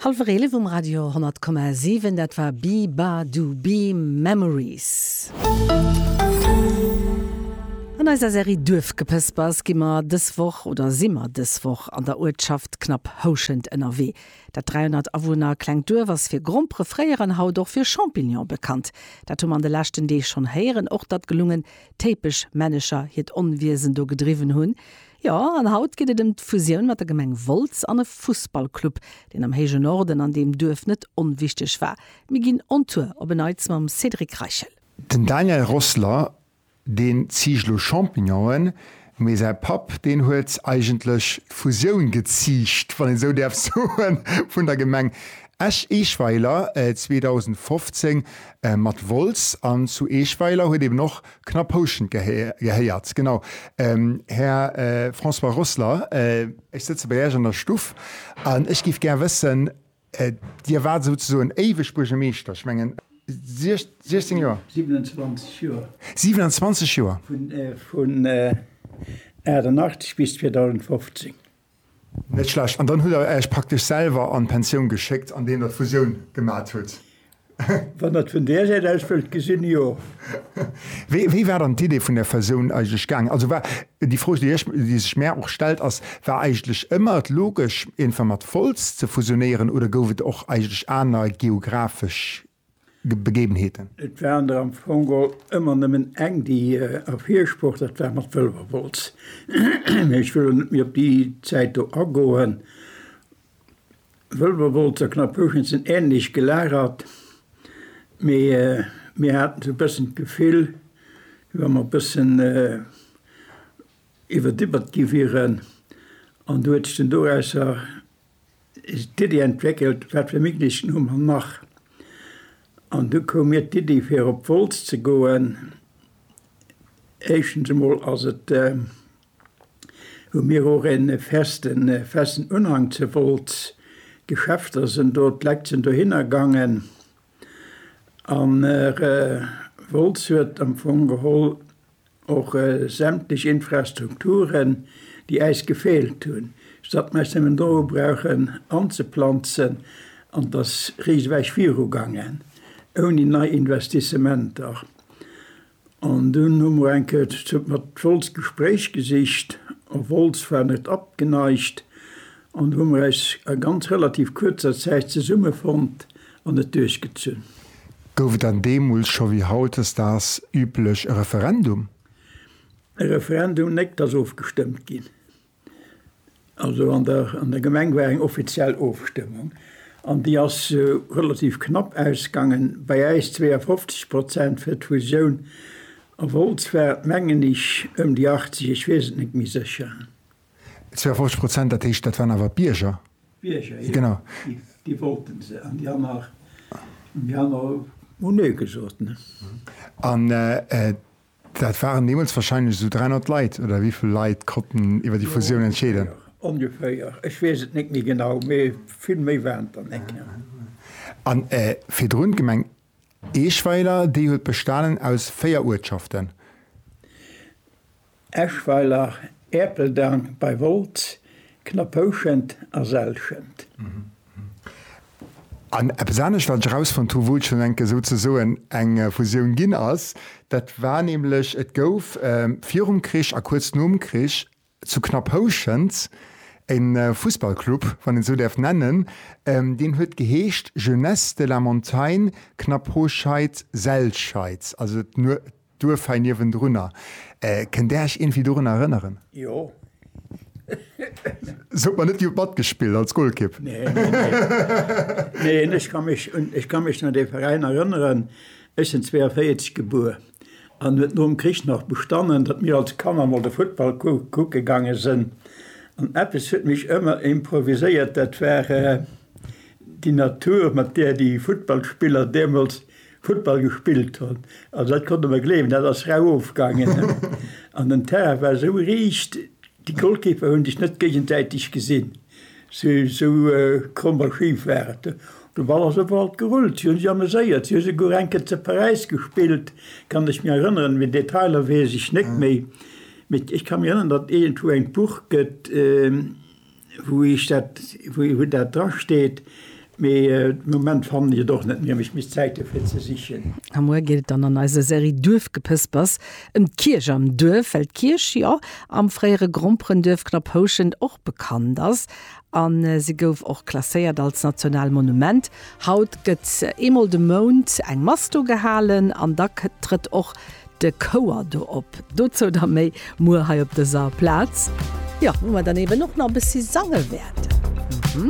Hallwer 11 um Radio 100,7, dat war Bibadoobeam, Memories. An eiser Serie Duerfgepëspers gi mer dës Woch, oder si mer dës Woch an der Uertschaft Knapphouschent ënnerwee. Dat 300 Awunner klengt Duerf ass fir Grompere fréier an haut och fir Champignone bekannt. Dat hu mer an de leschten Deeg schonn héieren. Och datt gelungen Téipeschmännecher hiert Onwiesen do gedriwwen hunn. Jo, an haut geet et ëm d'Fusioun mat der Gemeng Wolz an e Fussballclub, deen am héije Norden an deem Duerf net onwichteg war. Mir ginn on Tour, op e Neits mam Cédric Reichel. Den Daniel Rossler, deen ziicht lo Champignonen, mee säi Papp, deen huet eigentlech d'Fusioun geziicht, wann een esou däerf soen, vun der Gemeng Esch-Eeschweiler 2015 mat Wolz. An zu Eeschweiler huet eben och Knapp houschend gehéiert. Genau, Här François Rossler, ech sëtze bei Iech an der Stuff an ech géif gär wëssen, Dir waart souzesoen éiweg Buergermeeschter, ech mengen 16 Joer? 27 Joer. 27 Joer! Vun 1988 bis 2015. Net schlecht. An dann hutt der Äech praktesch selwer an d'Pensioun geschéckt, andeem der d'Fusioun gemat hutt? Wann der et vun där Säit aus wëllt gesinn, jo. Wéi, wéi war dann d'Idee vun der Fusioun eigentlech gaangen? Also war, déi Fro, déi ech, déi sech mär och stellt, ass, War eigentlech ëmmer et logesch, iergendwann mat Wolz ze fusionéieren oder gouf et och eigentlech aner geographesch Begebenheeten. Et waren der am Fong all ëmmer nëmmen eng, déi ervirspruch, dat war mat Wëlwerwolz. Mee ech wëll elo net méi op déi Zäit do agoen. Wëlwerwolz a Knapphuschent sinn änlech gelagert, mee mir haten esou e bëssen d'Gefill, wéi wa mer e bëssen iwwerdibbert gi wieren. An do huet sech dann dorausser. d'Iddi entwéckelt, wat fir Meetings hu mer nach. An du koum mir d'Iddi fir op Wolz ze goen. Éischtens emol ass et hu mir och en festen festen Unhang zu Wolz. D'Geschäfter sinn do, d'Leit sinn dohinner gaangen. An Wolz huet am Fong geholl Och sämtlech Infrastrukturen, déi äis gefeelt hunn, statt mer äis nëmmen doru brauchen anzeplanzen, an et ass riseweich viru gaangen, ouni nei Investissementer. An dunn hu mer enke mat Wolz d'Gespréich gesicht, a Wolz war net abgeneigt, An do hu mer eis a ganz relativ kuerzer Zäit zesummefonnt an et duerchgezunn. Gouf et dann deemools scho wéi hautdesdaags üblech e Referendum? E Referendum, néck, t'ass ofgestëmmt ginn. Also an der an der Gemeng war eng offiziell Ofstëmmung an déi ass relativ knapp ausgangen, bei äis 52 Prozent fir d'Fusioun. A Wolz war et mengen ech ëm déi 80, ech weess et net méi sécher. 52 Prozent, dat heescht, dat waren awer d'Bierger? D'Bierger, jo. Genau. Déi wollte se. An déi aner, déi aner hu Nee gesot, ne? An dat waren deemools warscheinlech esou 300 Leit, oder wéi vill Leit konnten iwwer déi Fusioun entscheeden? Jo, ongeféier, ongeféier. Ech weess et net méi genau, mee vill méi waren et der net, jo. An virdrun d'Gemeng Eeschweiler, déi huet bestanen aus véier Uertschaften. Eschweiler, Erpeldang bei Wolz, Knappouschent a Selschent. An eppes anescht, wat ech erausfonnt hu wou et schonn enke souzesoen eng Fusioun ginn ass, dat war nämlech, et gouf virum Krich a kuerz nom Krich Zu Knapphouschent e Fussballclub, wann een esou däerf nennen, deen huet geheescht Jeunesse de la Montagne Knaphoscheid-Selscheid, also d'Duerf hei niewendrunner. Kënnt Där Iech iergendwéi dorun erënneren? Jo. Sot mer net, Dir hutt matgespillt als Golkipp. Neen, neen, neen. Neen, ech ka mech un, ech ka mech un dee Veräin erënneren. Ech sinn 42 gebuer. an huet nom Krich nach bestannen, datt mir als Kanner mol de Futtball kucke gaange sënn. An eppes huet mech ëmmer improviséiert, dat war déi Natur, mat där déi Futtballspiller deemools Futtball gespillt hunn. Also dat konnt Der mer gleewen, dat ass rau ofgaangen. An den Terrain war esou riicht, Déi Goalkeeper hunn sech net géigensäiteg gesinn, sou kromm a schif war et. De Ball ass op alt gerullt, si hu sech ameséiert, si hu souguer eng Kéier ze Paräis gespillt, kann ech mir erënneren. Mee Detailer weess ech net méi. Mee ech ka mir erënneren, datt iergendwou eng Buch gëtt, wou ech dat, wou dat drasteet. Mee de Moment fannen ech et och net, mir hunn ech misst Zäit dofir ze sichen. A muer geet et dann an eiser Serie Duerfgepëspers ëm d'Kierch am Duerf, well d'Kierch jo am fréiere Gromperenduerf Knapphouschent och bekannt ass a se gouf och klasséiert als national Monument. Haut gëtt eemol de Mount eng Mass do gehalen an da trëtt och de Chouer do op. Dozou da méi muer hei op dëser Plaz. Jo, wou mer dann eeben och nach e bëssi sange wäerten.